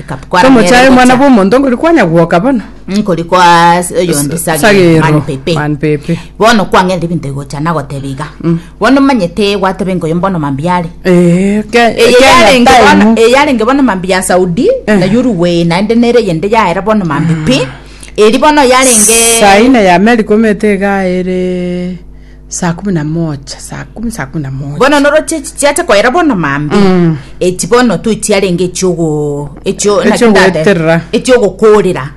Kapkwara Tomochaye nere omwana gocha. bw'omonto nkori kwanya gwoka bono. nkori kwa s- oyo ndi Sa- sagere sagero, man pepe man pepe. bono kwang'erire ebinto egocha nagoteba iga bono omanyete gwateba enka oyo mbono mambia are Eh, ke- Eye Kenya yarenge time. bono- eye yarenge bono mambi ya saudi Eh. na yuruwe naende nere yende yaera bono mambi pi eri bono yarenge Saine ya America omete iga ere Saa kumi na mocha, saa kumi, saa kumi na mocha. bono noro chi- chi- chiacha koera bono mambi Mm. eki bono tu chiarenge ekiogo ekio- naki ndate- Ekiogoeterera. ekiogokorera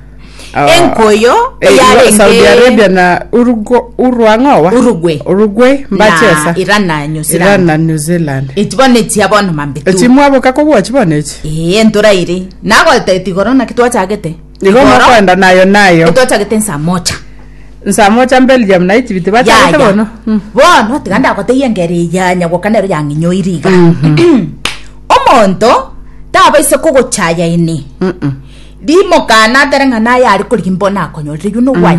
Ah. enkoyo Eh, eyarenge- Saudi Arabia na Urugu- Uruang'owa Uruguay. Uruguay na mbachesa Iran na New Zealand. Iran na New Zealand eki bono echia bono mambi tu echimwaboka kobwachi bono echi ee ntoraire nagotetigoro naki twachagete Nigo Igoro, mokoenda nayo nayo. Ntochagete nsa mocha. Nsa mocha Belgium na Egypt bachagete Yaya. bono. Mm. Bono tiga ndagotebie engeri eye ya nyagoka nero yang'inyoire iga. Omonto tabaisa kogochaya ene. Rimokana atere ng'a naye are korigia mbono akonyorire. You know why?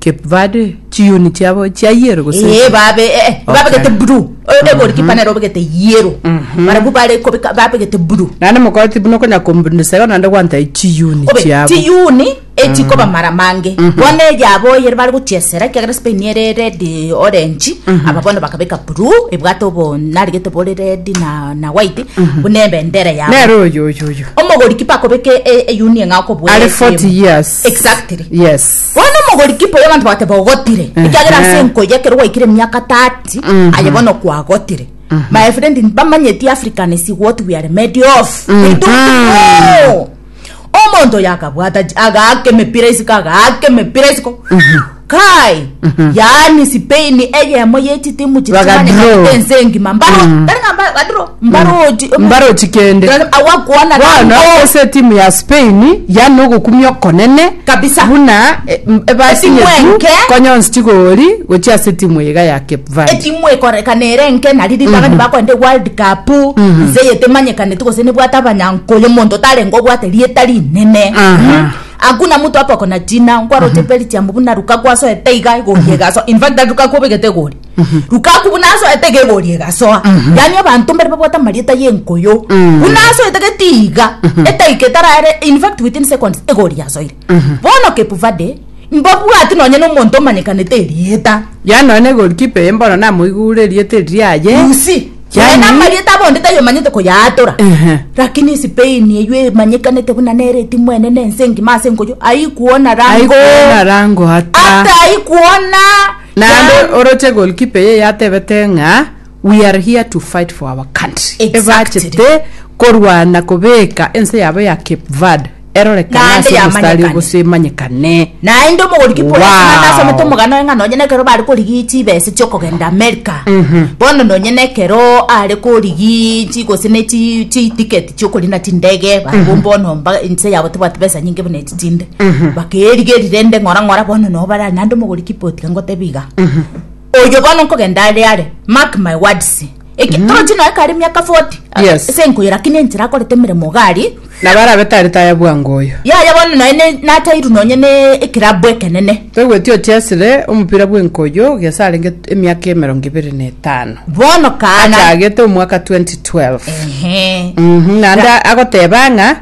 Cape Verde chiyuni chiabo chia yero gose Ee, echi? babe eh, eh, Okay. babegete blue Eh, eh, goalkeeper nere obegete yellow barabwo bare kobeka babegete blue nane mokoti buna okonya kombundesega nande gwanta chiyuni obe chiabo tiyuni echikoba mara mange bono eyabo oyere bari gochiesera ekiagera spain ere red orange aba bono bakabeka blue ebwate obo narigete bore red na, na white buna ebendera yabo nere oyo oyo oyo omogoriki pakobeka eyuni eng'a okobwera Are 40 years. exactly yes Bono omogori kipo y'abanto bagoteba ogotire, ekiagera ase enko eye ekero gwaikire emiaka 30 aye bono kwagotire. My friend mbamanyeti African is what we are made of. We don't know. Omonto oyo akabwata chi- agaaka emepira isiko agaaka emepira isiko kai yaani Spain eyemo yechitimu Bagadraw. chitimanyekanete ense engima mbaro tari ng'a mba- badraw mbaroti kende. Bono ase etimu ya Spain yaani nogokumia okonene buna ebasinye tu konya onsi chigori gochia ase etimu eye iga ya Cape Verde. Etimu ekorekana ere enke nari ribaga nibakoenda eWorld Cup nse eye temanyekaneti gose nebwate abanyankoyo monto tarenge obwate rieta rinene. Hakuna mtu hapa akona jina nkwaroti Belgium buna Lukaku asoete iga egori egasoa infact Lukaku obegete egori. lukaku buna asoete iga egori egasoa yaani abanto mbare babwate amarieta ya enkoyo buna asoete gete iga edaika etaraere in fact within seconds egori yasoire bono cape verde mbabwati nonye na omonto omanyekanete erieta yaani nonye na egorikipa eye mbono namoigure erieta eri riaye you see Yaani- yaani amarieta abonde taiyo omanyete koyaatora Ehe. lakini spain eywo emanyekanete buna nere etimu enene ense engima ase enkoyo aikuona rango aikuona rango ata ata aikuona Naende Naam. oroche goalkeeper eye yatebete ng'a we are here to fight for our country. Exactly. Ebachete korwana kobeka ense yabo ya Cape Verde erorekane Naende ase omostari yamanyekane. oboso emanyekane. Naende omogorikipa oria Wow. Atalanta asomete omogano oye ng'a nonye nekero bare korigia chibese chiokogenda America bono nonye nekero are korigia chi gose ne chi- chitiketi chiokorina chindege bare bomba onomba ense yabo tibwati besa nyinge buna echi chinde bakeerigeria rende ng'ora ng'ora bono noo barare naende omogori kipoti iga ngotebe iga oyo bono nkogenda are are mark my words Eki- torochi noe kare miaka 40 ah, Yes. ase enkoyo lakini enchera akorete emeremo iga aria nabo arabe tari taya bwango oyo yaya bono noe ne- natairu nonye ne ekerabu ekenene toigweti ochesire omopira bwenkoyo gesa arenge emiaka emerongo ibere na etano bono kana achagete omwaka 2012 Ehe. Mhm, naende agoteba ng'a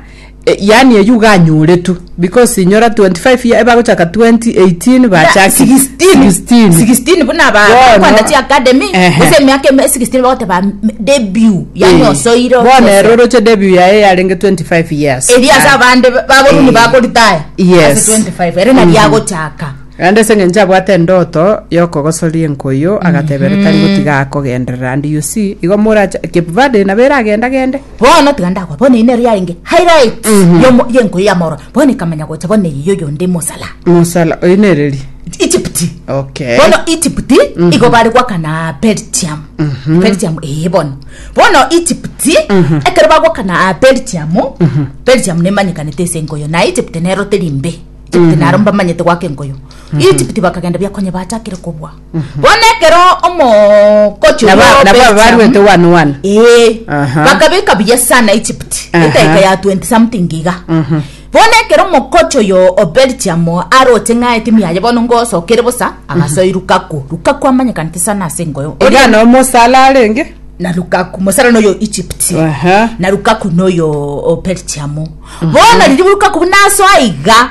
Eh, yaani eyio ganyoretwe because inyora 25 year ebagochaka 2018 bachakire 16 16 16 buna ba- Bono. bakwenda chi academy Ehe. ase emiaka eme 16 bagoteba m- debut yani Eh, osoire bono ero oroche debut yaye yarenge 25 years eri ase abande baboruni Eh. bakoritaya Yes. ase 25 ere nari agochaka rande ase eng'encho abwate endoto yokogosoria enkoyo agatebera tari gotiga akogenderera and you see igo moracha kepvade nabere agenda gende Bono tiga ndakwe, bono eye nero yarenge highlight y'omo- y'enkoyo ya Maura, bono ekamanya gocha bono eye y'oyonde Mosala. mosala oyo nereri Egypt. okay bono egypt igo bari gwakana belgium belgium ee bono bono egypt ekero bagwakana belgium belgium nemanyekanete ase enkoyo na egypt nero teri mbe egypt naro mbamanyete gwaka enkoyo egypt bakagenda biakonye bachakire kobua Bono ekero omogocho Nabo- bwao nabo Belgium- abaruete one one. Ee, Aha. bakabeka buya sana egypt Aha. edaika ya 20 something iga Mhm. bono ekero omokocho yo obelgium aroche ng'a etimu yaye bono ngosokere bosa agasoe lukaku lukaku amanyekanete sana ase engoyo Iga no mosala arenge. na lukaku mosara noyo egypt Aha. na lukaku noyo o belgium bono riria lukaku buna asoa iga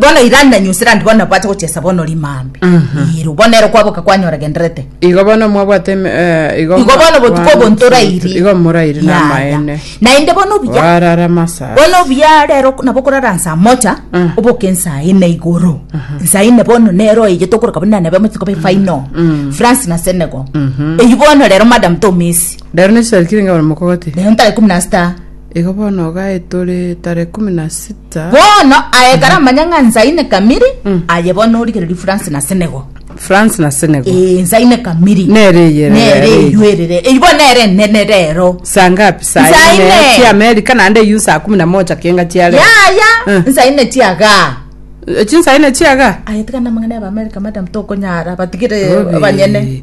Bono irani na New Zealand bono nabwate gochesa bono rimambe. Iru, bono ero kwaboka kwanyora genderete. Igo bono mwabwate eme- eh, igo Igo bono botuko obo ntorairi. Igo morairi Ya, ya. namaene. Naende bono obuya. Warara masa. bono obuya rero nabo korara nsa mocha Mm. oboke nsa ine igoro nsa ine bono nero eye tokoroka buna nabe mochiko be final Mm. france na senegal Mhm. eyi bono rero madam tomesi Rero nechitarikire ngabona mokogati. rero ntare kumi na sita Igo bono Ogai tore tarehe ikomi na sita. Bono aekare amanye ng'a nsaine Kamiri, Mm. aye bono origereria France na Senegal. France na Senegal. Eh, nsaine Kamiri. Nere eyerere Nere rero. eywo erere. Eywo bono nere enene rero. Saa ngapi? Saa Saa ine ine. chia Amerika naende eywo saa kumi na moja kienga chia leo. Yaya, Mm. nsaine tiaga. Eki saa ine chiaga? Aye tigana amang'ana ya Amerika, madam, tokonyara, batigire Obi. abanyene.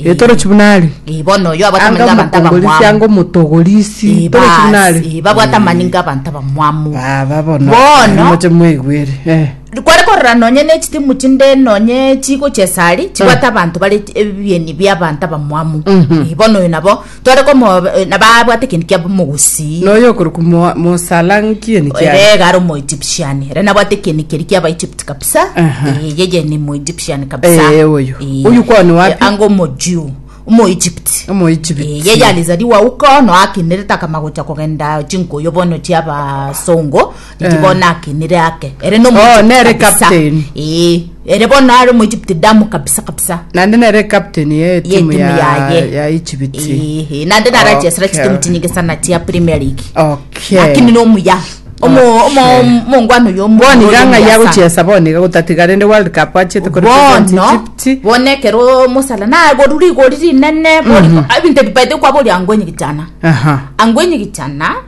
Ee, torochi buna are. Ee, bono oyo abwate Anga amani ng'abanto omokongorisi, anga abamwamu. omotogorisi, Ee, torochi buna bas, are. ee, babwate amani ng'abanto abamwamu. Baba bono, Bono. moche mwaigwere. Eh. kware korora nonye ne chitimu chinde nonye chigo chesari chibwate abanto bare ebieni biabanto abamwamu Mhm. Eh, bono oyo nabo Tore komoba eh, na babwate ekintu kia mogusi. Na oyo okorokwa Mo- mosala nkie ni kiare Ere iga ari omoegyptian ere nabwate ekieni keri kia abaegypt kabisa Aha. Eh, yeye ni moegyptian kabisa Eh, oyo. Eh, Oyo kwao ni wapi? eh, anga omojiu omoegypt omoegypt Eh, yeye alizaliwa uko no akinerete akamagocha kogenda chinkuyu bono chiabasongo Inki Eh. bono ake nere ake ere no Oh, nere captain. ee ere bono are mu Egypt damu kabisa kabisa nande nere captain ye ye timu timu ya yaye ya ichibiti Ee, ee, nande narachesera Okay. chitimu chinyinge sana chia premier league okay lakini nomuya omo omo Okay. mongwano yo boni ganga yagochesa boni gagotatiga rende world cup achete kore president bono Egypt. bonekero mosala nagorwa rigori rinene ebinto ebibaete kwabori angwenye gichana aha angwenye gichana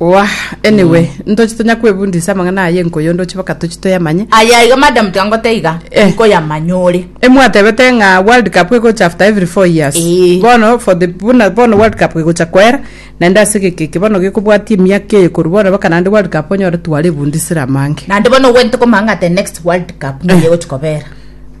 Oah, anyway, ntoche tonya kwebundisa amang'ana aya enko yonde oche baka toche toyamanye. Aye iga madam tiga ngote iga, Eh. nkoyamanya ore. Emwatebete ng'a world cup egocha after every four years Ee. bono for the buna bono world cup egocha koera naende ase egeka eke bono gekobwatia emiaka eye korwa bono baka naende world cup onyore twarebundisire amange Naende bono ogwete komanya ng'a the next world cup nigo egochi kobera.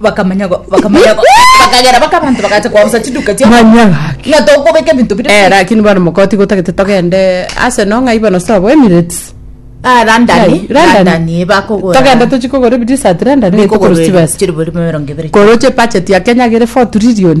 bakamanya go- bakamanya go- bakagera baka abanto bagacha koamsa chiduka chia Manya gaki. ng'a tokobeka ebinto bire Eh, lakini bwana mokoti gotagete togende ase no ng'aiba no sabo Emirates. Ah, London, Ai, London. London, eh, bakogora. Togende tochi kogora ebidisat London Bikogora tokorusibesa. chiri bori emerongo ebere. Koroche budget ya Kenya gere 4 trillion.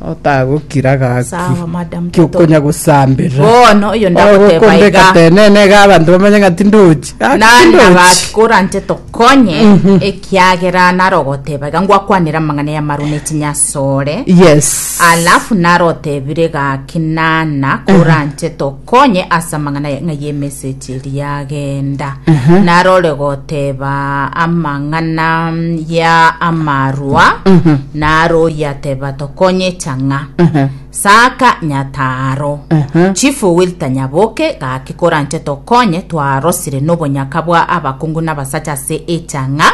otagokira gaki Sawa, madam, kiokonya gosamberera Bono, oyo ndagoteba ogokondeka iga. tenene iga abanto bamanye ng'a tindochi Gaki nari tindochi. nabakoranche tokonye ekiagera narogoteba iga ngwakwanera amang'ana y'amaru ne chinyasore yes alafu narotebire gaki nana koranche to Konye ase amang'ana ya- ng'a y'emesegi eria yagenda, narore goteba amang'ana ya amarwa, naro oyateba tokonye chang'a. Saka nyataro. Chief Owil Tanyaboke, gaki koranche tokonye, twarosire nobonyaka bwa abakungu nabasacha ase echang'a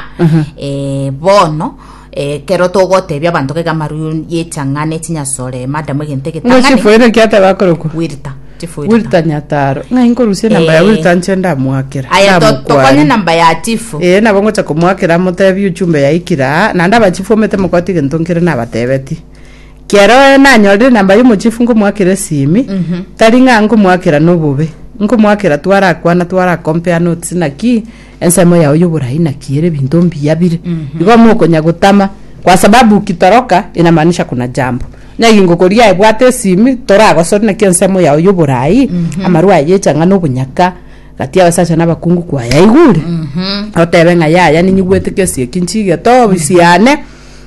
eh, bono, Ekero togotebia abanto ng'ake amarwaire y'echang'aa ne chinyasore, madam egento Ng'o egetang'ani, chifoire ki ateba akorokwa? Wilta, chifoire ta. Wilta Nyataro. Ng'ai nkorusia enamba ya Eh. Wilta nche ndamoakera. Aye to- tokonye Ndamokwari. namba ya chief. Eh, nabo ngocha komoakera motebie uchumbe yaikire aa, naende abachifu omete mokoti egento nkere nabatebetie. Kero eh, nanyorire enamba ya omochifu nkomoakera esimi, tari ng'a nkomoakera nobobe. Nkomoakera twarakwana twara compare notes naki Ensemo yao y'oboraai naki ere ebinto mbiya bire, igo mokonya gotama, kwa sababu ukitoroka inamaanisha kuna jambo. Onye egingo koria ebwate esimi, toragosori naki ensemo yao y'oboraai, amarwa aye echang'ani na obonyaka gati y'abasacha na abakungu kwayaigure, otebe ng'a yaya ninyigwete kesi eki nchigete obisiane,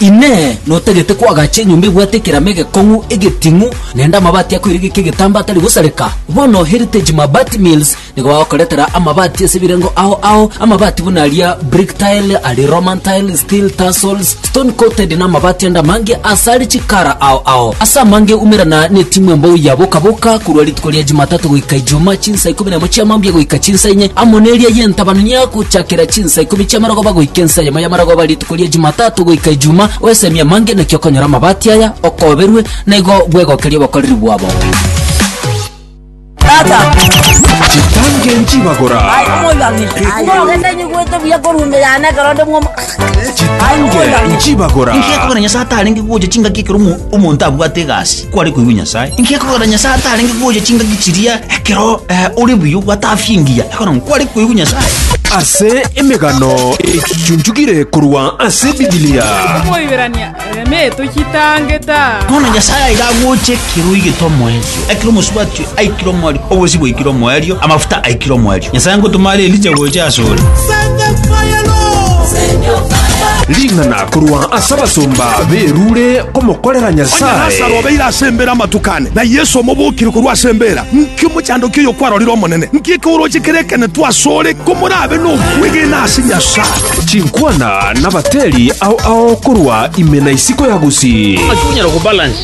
Inee! Notagete koagacha enyomba ebwate ekerama egekong'u, egeting'u, naende amabati akoiregeka egetambaa atari gosareka? Bono Heritage Mabati Mills nigo bagokoretera amabati ase ebirengo ao ao, amabati buna aria brick tile, aria roman tile, steel tarsals, stone coated na amabati ande amange ase are chikara ao ao. Ase amange umerana ne timu embou ya Boka Boka korwa rituko ria Jumatatu goika Ijumaa chinsa ikomi na emo chiamambia goika chinsa inye amo neria yentabana niagochakera chinsa Saa ikomi chi'amarogoba goika ensa eyemo y'amarogoba rituko ria Jumatatu goika Ejuma, oesemie amange naki okonyora amabati aya, okoberwe, na igo bwegokerie obokoreri bwabo. Chitange nchibagora. Chitange nchibagora. Nkiekogera Nyasae atarenge gocha chingaki ekero omo- omonto abwate egasi. kware koigwa Nyasae. Inki akogera Nyasae atarenge kogocha chingaki chiria ekero eh, ore buya gwatafia engiya ekero ng'a kware koigwa Nyasae? ase emegano echuchunchugire korwa ase bibilia Moiberania, eme tochitangeta. Bono Nyasae aiga agocha ekero oigete omoerio, ekero omosubati aikire omoerio, obosio bwaikire omoerio, amafuta aikire omoerio. Nyasae ngotoma are Elija gocha asore. Ring'ana korwa ase abasomba berure komokorera Onye Lasaro Nyasae. obeire ase embeera amatuko ane, na Yeso omobokire korwa ase embeera, nki omochandoki oyo kwarorire Omonene? Nki ekeoroche kerekenetu asore komorabe nokwegena ase Nyasae? Chinkwana nabateri ao ao korwa ime na isiko ya gusii.